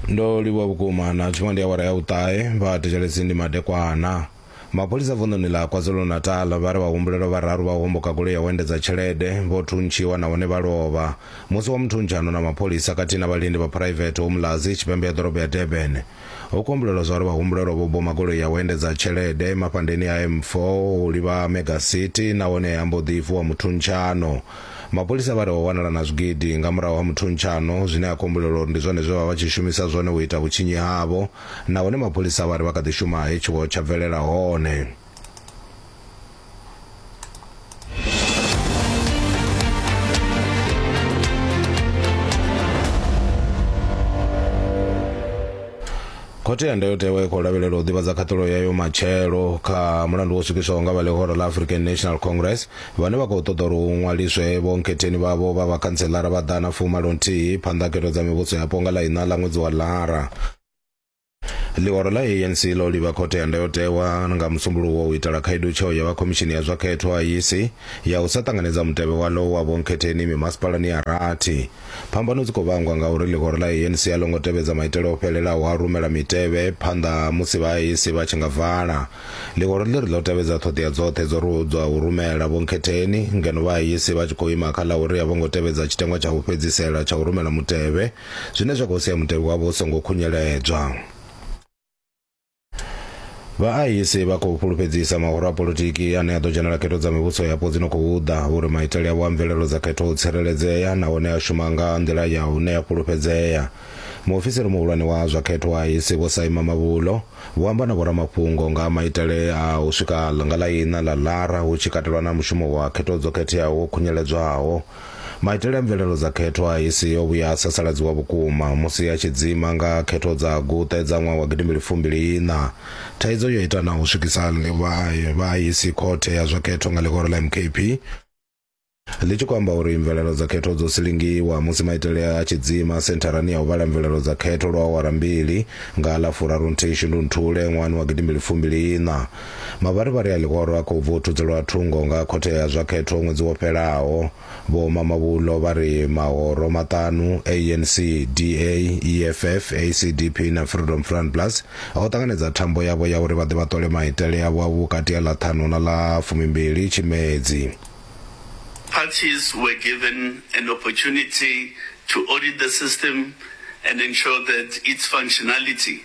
ndo livhuwa vhukuma na tshiṅwe ndi awara ya u ṱahe vha thetshelesi ndi madekwana mapholisa vunḓuni ḽa kwazulu-natal vha ri vhahumbulelwa vhararu vha homboka goloi ya u endedza tshelede vho thuntshiwa nahone vha lovha musi wa muthuntsha ano na mapholisa khathihi na vhalindi vha phuraivethe umlazi tshipembe ya ḓorobo ya durban Ho kombulelwa zwa uri vhahumbulelwa vho boma goloi ya u endedza tshelede mafhandeni a M4 u livha Mega City nahone ha mbo ḓi vuwa muthuntshano. Mapholisa vha ri ho wanala na zwigidi nga murahu ha muthuntshano zwine ha kombulelwa uri ndi zwone zwe vha vha vha tshi shumisa zwone u ita vhutshinyi havho nahone mapholisa vha ri vha kha ḓi shuma he tshiwo tsha bvelela hone. khothe ya ndayotewa i khou lavhelela u ḓivhadza khaṱulo yayo matshelo kha mulandu wo swikiswaho nga vha ḽihoro ḽa african national congress vhane vha khou ṱoḓa uri hu ṅwaliswe vhonkhetheni vhavho vha vhakhantselara vha ḓana fumalo nthihi phanḓa khetho dza mivhuso yapo nga ḽa iṋa ḽa ṅwedzi wa lara Ḽihoro ḽa ANC ḽo livha Khothe ya Ndayotewa nga Musumbuluwo u itela khaedu tsheo ya vha Khomishini ya zwa Khetho, IEC, ya u sa ṱanganedza mutevhe waḽo wa vhonkhetheni mimasipalani ya rathi. Phambano dzi khou vhangwa nga uri ḽihoro ḽa ANC a ḽo ngo tevhedza maitele o fhelelaho a u rumela mitevhe phanḓa musi vha IEC vha tshi nga vala. Ḽihoro ḽi ri ḽo tevhedza ṱhoḓea dzoṱhe dzo ri hudzwa u rumela vhonkhetheni ngeno vha IEC vha tshi khou ima kha ḽa uri a vho ngo tevhedza tshiteṅwa tsha u fhedzisela tsha u rumela mutevhe zwine zwa khou sia mutevhe wavho u songo khunyeledzwa. Vhaahisi vha khou fhulufhedzisa mahoro a politiki ane a ḓo dzhenela khetho dza mivhuso yapo dzi no khou ḓa uri maitele avho a mvelelo dza khetho o tsireledzea nahone a shuma nga nḓila ya hune ya fhulufhedzea. Muofisiri muhulwane wa zwa khetho wa ahisi Vho Saima Mavhulo vho amba na vhoramafhungo nga maitele a u swika nga ḽa iṋa ḽa ḽara hu tshi katelwa na mushumo wa khetho dzo khetheaho wo khunyeledzwaho. Maitele a mvelelo dza khetho a IEC o vhuya a sasaladziwa vhukuma musi a tshi dzima nga khetho dza Guṱe dza ṅwaha wa gidimbili fumbili iṋa. Thaidzo yo ita na u swikisa vha IEC khothe ya zwa khetho nga ḽihoro ḽa MKP ḽi tshi khou amba uri mvelelo dza khetho dzo silingiwa musi maitele a tshi dzima sentharani ya u vhala mvelelo dza khetho lwa awara mbili nga ḽa furarunthihi Shundunthule ṅwahani wa gidimbili fumbili iṋa. Mavharivhari a ḽihoro a khou vuthudzelwa thungo nga khothe ya zwa khetho ṅwedzi wo fhelaho. Vho Mamabolo vha ri mahoro maṱanu, ANC, DA, EFF, ACDP na Freedom Front Plus, o ṱanganedza thambo yavho ya uri vha ḓe vha ṱole maitele avho a vhukati ha ḽa ṱhanu na ḽa fumimbili Tshimedzi. Parties were given an opportunity to audit the system and ensure that its functionality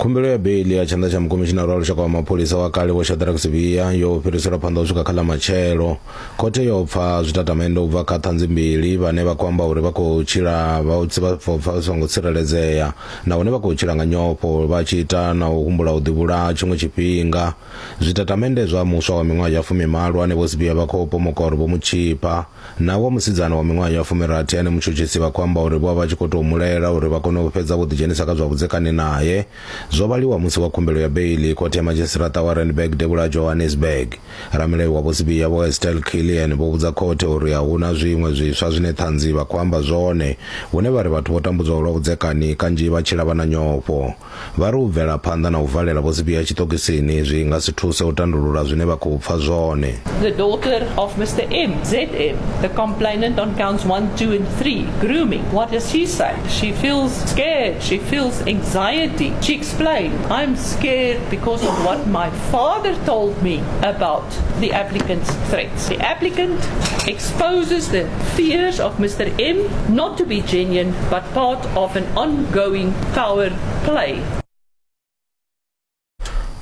khumbelo ya beili ya tshanḓa tsha mukomishinara wa lushaka wa mapholisa wa kale vho shadrack sivhiya yo fhiriselwa phanḓa u swika kha ḽa matshelo khothe yo pfa zwitatamennde u bva kha ṱhanzi mbili vhane vha khou amba uri vha khou tshila vha tsi vha pfa vha songo tsireledzea nahone vha khou tshila nga nyofho vha tshi ita na u humbula u ḓivhulaha tshiṅwe tshifhinga Zwitatamennde zwa muswa wa miṅwaha ya fumimalo ane Vho Sibiya vha khou pomokora vho mu tshifha, na wa musidzana wa miṅwaha ya fumirathi ane mutshutshisi vha khou amba uri vho vha vha tshi khou tou mu laela uri vha kone u fhedza vho ḓidzhenisa kha zwa vhudzekani nae, zwo vhaliwa musi wa khumbelo ya beiḽi Khothe ya Madzhisiṱiraṱa wa Randburg Devhula ha Johannesburg. Ramilayo wa Vho Sibiya Vho Estelle Killian vho vhudza khothe uri a hu na zwiṅwe zwiswa zwine ṱhanzi vha khou amba zwone hune vha ri vhathu vho tambudzwaho lwa vhudzekani kanzhi vha tshila vha na nyofho. Vha ri u bvela phanḓa na u valela Vho Sibiya tshiṱokisini zwi nga si thuse u tandulula zwine vha khou pfa zwone. The daughter of Mister M, ZM, the complainant on counts one, two and three, grooming. What does she say? She feels scared, she feels anxiety. She explained, I'm scared because of what my father told me about the applicant's threats. The applicant exposes the fears of Mr. M not to be genuine but part of an ongoing power play.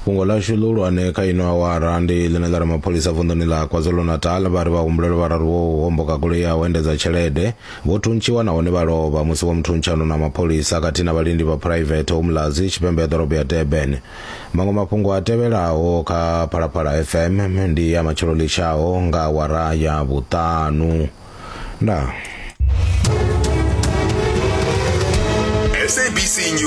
fhungo lashu ḽihulwane kha ino awara ndi ḽine ḽa ri mapholisa vunḓuni ḽa kwazulu-natal vha ri vhahumbuleli vhararu wo homboka goloi ya u endedza tshelede vho thuntshiwa nahone vha lovha musi vho muthuntsha no na mapholisa khathihi na vhalindi vha phuraivethe umlazi tshipembe ya ḓorobo ya durban maṅwe mafhungo a tevhelaho kha phalaphala fm ndi ya matshelo litshaho nga wara ya vhuṱanu ndaa sabc news